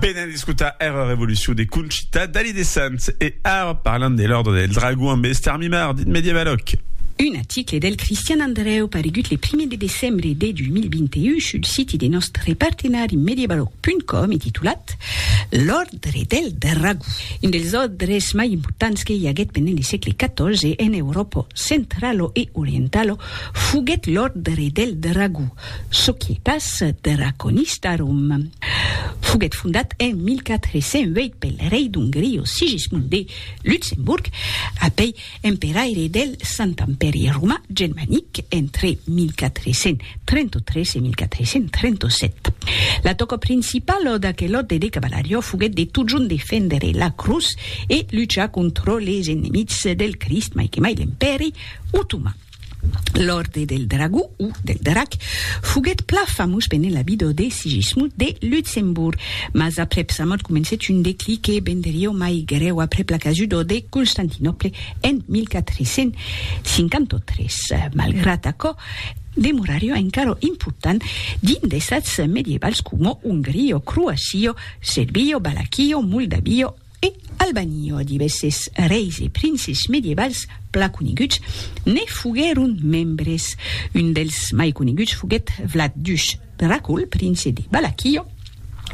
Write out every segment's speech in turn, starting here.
Venen d'escotar era revolucion de Conchita Dalí de Sants e ara parlam de l'Òrdre del Dragon amb Esther Mimard, dit Medievaloc. Un article del Cristian Andrèu paregut le primièr de decembre de 2021 sul siti de nòstre partenari Medievaloc.com e titulat L'Òrdre del Dragon, un dels òrdres mai importants que i aguèt pendent le sègle XIV en Euròpa centralo e orientalo foguèt l'Òrdre del Dragon, Soquietas de Raconistharum foguèt fondat en 1408 pel rei d'Ongria Sigismund de Luxemburg, apèi emperaire del Sant Empèri Romà Germanic entre 1433 e 1437. La tòca principala d'aquel òrde de cavalariá foguèt de totjorn defendre la crotz e luchar contra les enemics del Crist, mai que mai l'Empèri Otoman. L'Òrde del Dragó, o del Drac, foguèt plan famós pendent la vida de Sigismund de Luxemborg, mas aprèp sa mòrt comencèt un declin que venderió mai grèu aprèp la casuda de Constantinòple en 1453. Malgrat aquò, demorarió encara important dins d'estats medievals coma Ongria, Croacia, Serbia, Valaquia, Moldavia, E al banio divèsses reis e princes medievals plan coneguts ne foguèron membres. Un dels mai coneguts foguèt Vlad Dush Dracul, prince de Balaquio,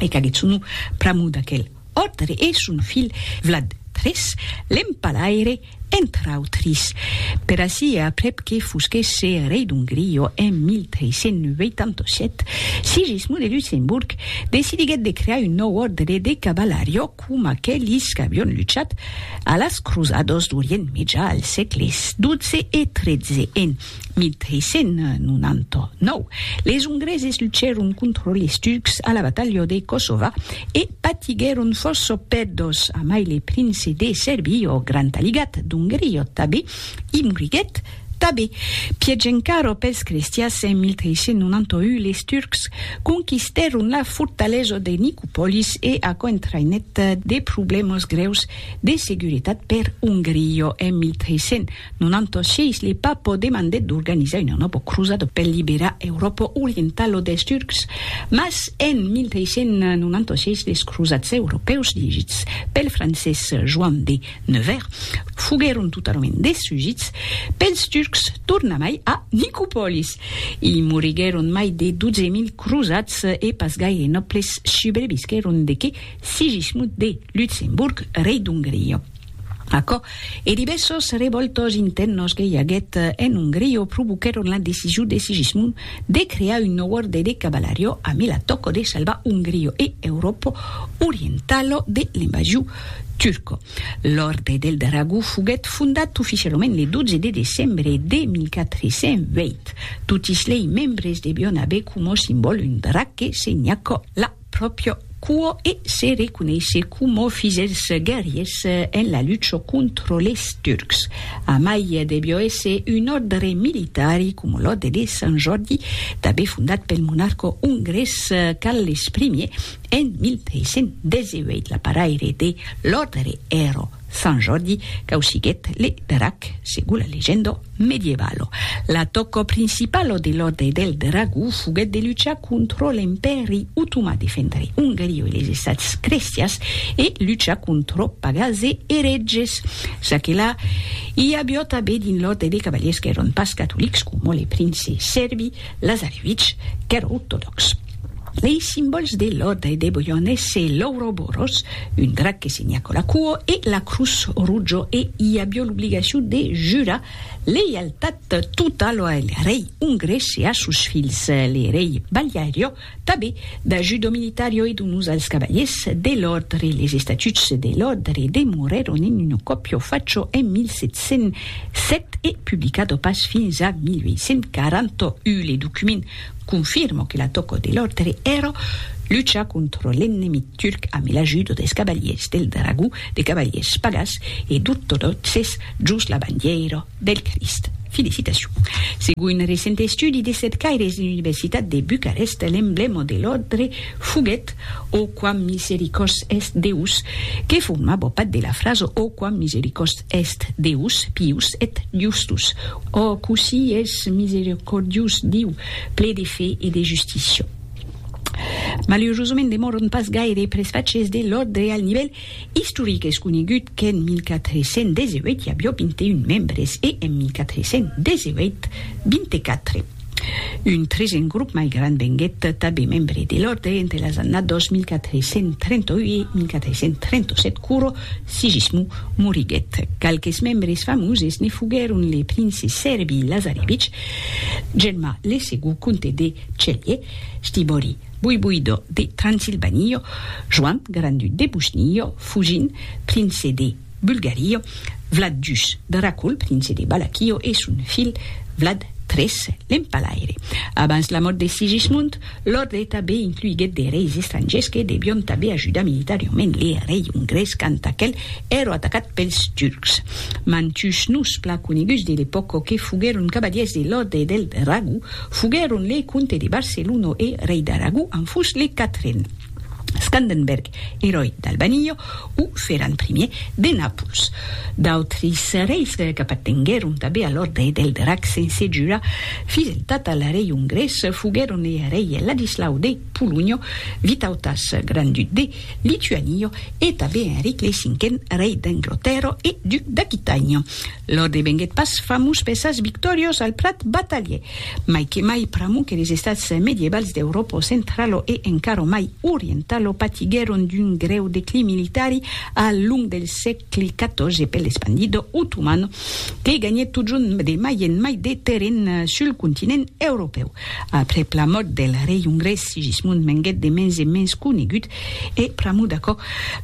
e qu'aguèt son nom pr'amor d'aquel òrdre e son filh Vlad iii, l'empalaire, entre autris, per ací e aprèp que fusquèsse rei d'Ongria en 1387, Sigismond de Luxemborg decidiguèt de crear un nòu òrdre de cavalariá coma aquelis qu'avián luchat a las crosadas d'Orient Mejà al sègle xii e xiii en 1399, les Ongreses luchèron contra les Turcs a la batalha de Kosova e patiguèron fòrça pèrdas, amai le prince de Serbia, ò grand aligat d'Ongria tabé, i moriguèt tabé. Pièch encara pels crestians, en 1391 les Turcs conquistèron la fortalesa de Nicopolis e aquò entraïnèt de problèmas grèus de seguretat per Ongria en 1392. Non anto sièis le Papo demandèt d'organizar una nòva crosada per liberar Euròpa orientala dels Turcs, mas en 1396 les crosats europèus dirigits pel francés Joan de Nevers foguèron totalament destrugits pels Turcs tornamai a Nicopòlis. I moriguèron mai de 12.000 crosats e pas gaire nòbles subrevisquèron de que Sigismund de Lutzemburg, rei d'Ongria. Aquò e divèssos revòltas intèrnas que i aguèt en Ongria provoquèron la decision de Sigismund de crear un nòu òrde de cavalaria amé la tòca de salvar Ongria e Euròpa orientala de l'invasion turca. L'Òrde del Dragó foguèt fondat oficialament le 12 de decembre de 1408. Totis lei membres devián aver coma simbòl un drac que senhaca la pròpio cuò e se reconeisser coma fizèls guerriers en la lucha contra les Turcs. Amai debió èsser un òrdre militari coma l'òrdre de Sant Jòrdi, tanben fondat pel monarca ongrés Carles Ier en 1318. L'aparaire de l'òrdre èra Sant Jordi causiguèt le drac segon la legenda medievalo. L'atòca principala de l'òrdre del Dragó foguèt de luchar contra l'Empèri Otomà, defendre Ongaria e les Estats crestians e luchar contra pagans e eretges. Ça que la, i aviá tanben dins l'òrdre de cavalièrs qu'èran pas catolics, coma les princes sèrbi, Lazarevitch qu'èra ortodòx. Lei simbòls de l'òrdre e de Boione se l'Ouroboros, un drac que signa cola cuo, e la crutz rutjo e i avió l'obligacion de jurar leialtat totalo al rei ongrés e a sos filhs, l'erei Baliario, Tanben da judo militario e donus als cavaliers de l'òrdre, les estatuts de l'òrdre demorèron en un còpio facho en 1707 e publicado pas fins a 1841. Le document confirma que la tòca de l'òrdre èra luchar contra l'ennemic turc amb l'ajuda dels cavaliers del dragó, de cavaliers pagàs e d'ortodòxes jos la bandièira. Del Crist. Felicitacion. Segon un recent estudi de cercaires de l'Universitat de Bucarest, l'emblèma de l'òrdre foguèt O quam misericors est Deus, que formava part de la frasa O quam misericors est Deus, pius et justus, O cossí es misericordiós Diu, ple de fe e de justícia. Malurosament demòran pas gaire presfachers de l'òrdre al nivèl Istoric, es conegut qu'en 1418 i avió 21 membres e en 1418, 24. Un tresen grop mai grand venguèt tabé membre de l'òrdre entre las annados 1438 e 1437 quoro Sigismund moriguèt. Qualques membres famoses ne foguèron le prince Serbi Lazarevich, Germà le Segond comte de Celje, Stibori, Buibuido de Transilvanio, Joan Grandu de Busnio, Fugin, prince de Bulgario, Vlad dus, Dracul, prince de Balakio, e son filh Vlad tres, l'empalaire. Abans la mòrt de Sigismund, l'òrdre tanben incluiguèt de reis estrangèrs que devion tanben ajudar militarioment le rei ongrés quand aquel èro atacat pels turcs. Mantuns noms plan coneguts de l'epòca que foguèron cavalièrs de l'òrdre del Dragó, Foguèron le comte de Barcelona e rei d'Aragó en fus le quatren, Scandenberg, eròi d'Albania, o Ferran Primièr de Nàpols. D'autres reis qu'apartenguèron tanben a l'òrdre del Drac sense jurar fideltat al rei ongrés foguèron le rei Ladislau de Polonha, Vitautas, grand-duc de Lituania, e tanben Enric le Cinquen, rei d'Anglotèrra e duc d'Aquitània. Lò devenguèt pas famós per sas victòrios al plat batalhier, mai que mai pr'amor que les estats medievals d'Euròpo centralo e encara mai orientalo patiguèron d'un grèu declin militari al long del sègle xiv per l'espandido otoman que ganhèt totjorn de mai en mai de terren sul continent europèu. Aprèp la mòrt del rei ongrés Sigismund venguèt de mens en mens conegut E, pr'amor d'aquò,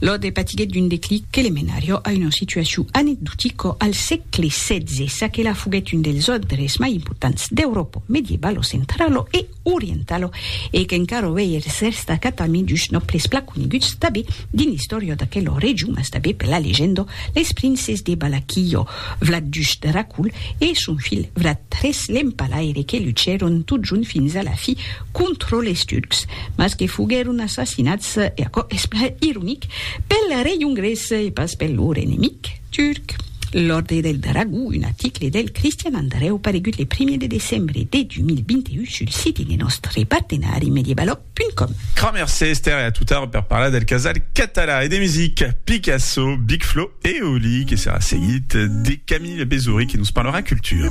Lode patiguèt d'un declic que le menarió a una situacion anecdotica al sègle setze, ça que la foguèt un dels òdres mai importants d'Euròpa medievalo centralo e orientalo e qu'encara uèi es restat parmi dus nòbles plan coneguts tanben dins l'istòria d'aquela region mas tanben per la legenda, les princes de Balaquillo, Vlad ii Dracul e son filh Vlad iii l'Empalaire que luchèron totjorn fins a la fi contra les Turcs, mas que foguèron assassinats, e aquò es plan ironic, pel rei ongrés e pas per lor enemic turc. L'Òrdre del Dragó, un article del Cristian Andrèu paregut le primièr de decembre de 2021 sul site de nòstre partenari mediebaloc.com. Cramercé Esther e a tot ara per parlar del casal català e de musica, Picasso, Big Flo e Oli, que serà seguit de Camille Bezory que nos parlarà cultura.